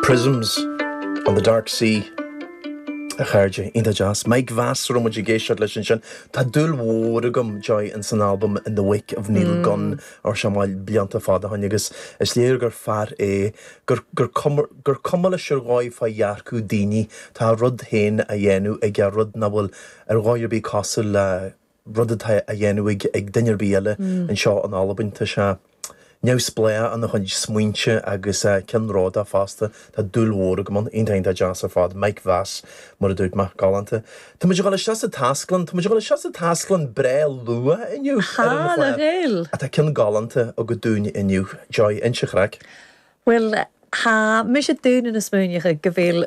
Prisms on the Dark Sea, a chairde, iontach deas. Mike Vass a raibh muid ag éisteacht leis ansin. Tá dúil mhór agam, Joy, ins an albam In the Wake of Neil Gunn, ár seamáil, blianta fada ó shoin, agus is léir gur fear é, gur, gur cuma, gur cuma leis ar dhóigh fá dhearcadh daoine, tá a rud féin á dhéanamh aige, rud nach bhfuil ar dhóigh ar bith cosúil le, rud atá á dhéanamh ag duine ar bith eile anseo in Albain. Tá sé neamhspleách ina chuid smaointe agus ceannródaíoch fosta. Tá dúil mhór agam ann. Aontaím, tá deas ar fad. Mike Vass, mar a dúirt mé. Galánta. Tá muid a dhul isteach sa taisclann, tá muid a dhul isteach sa taisclann breá luath inniu ar an chlár. Tá ceann galánta agat dúinn inniu, Joy, inis an chraic. Bhuel, tha mise daonnan a' smaoineachadh gu bheil.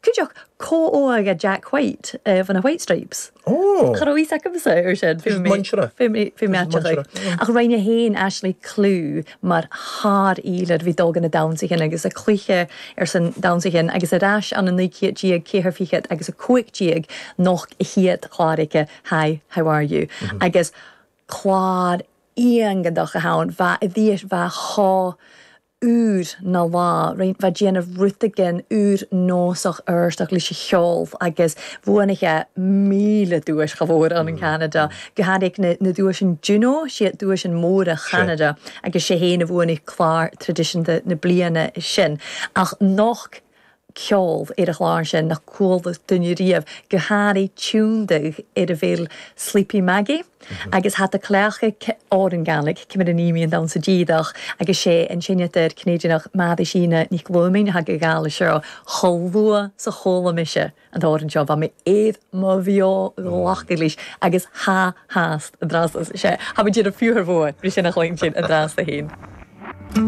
Cuideoidh comhghairdeas Jack White do na White Stripes. Cha raibh fhios agamsa ar sin fé mé meaitseáil. Ach roinn mé féin Ashley clú mar shár-fhílear. Bhí dul go na damhnsaí sin agus a cluiche ar son damhnsaí sin agus ar ais ann i naoi céad déag ceithre fichead agus a cúig déag noch a chéad chlár aici Hi, how are you? Agus clár iongadach a theann bheadh i bhfís bheadh chomh úr ná bha rin fa déanamh rtaigdn úr nósach artach leis an cheol agus bhuan sé míle duais chomh mhór an in Ceanada. Go háirithe na na duais an Juno, siad duais an móra Cheanada agus sé fhéin a bhuan clár traidisiúnta na bliana sin. Ach nocht. ceol ar an gclár sin nach gcuala duine riamh, go háirithe Tiondug ar a bhfuil Sleepy Maggie agus hata cleachta órangánaigh, ceann a naoi mbíonn ann sa díreach agus sé an seinnteoir Cnéidineach Mearisíne Nic Bhluimin a thagadh abhaile seo chomh luath is a chuala mise an t-amhrán seo, bhí mé ar mo bheo ghlacadh leis agus tha has an dras sé, tha muid ar an bhfíor bhua, bhí sé ina chluin sin, an dras do fhéin.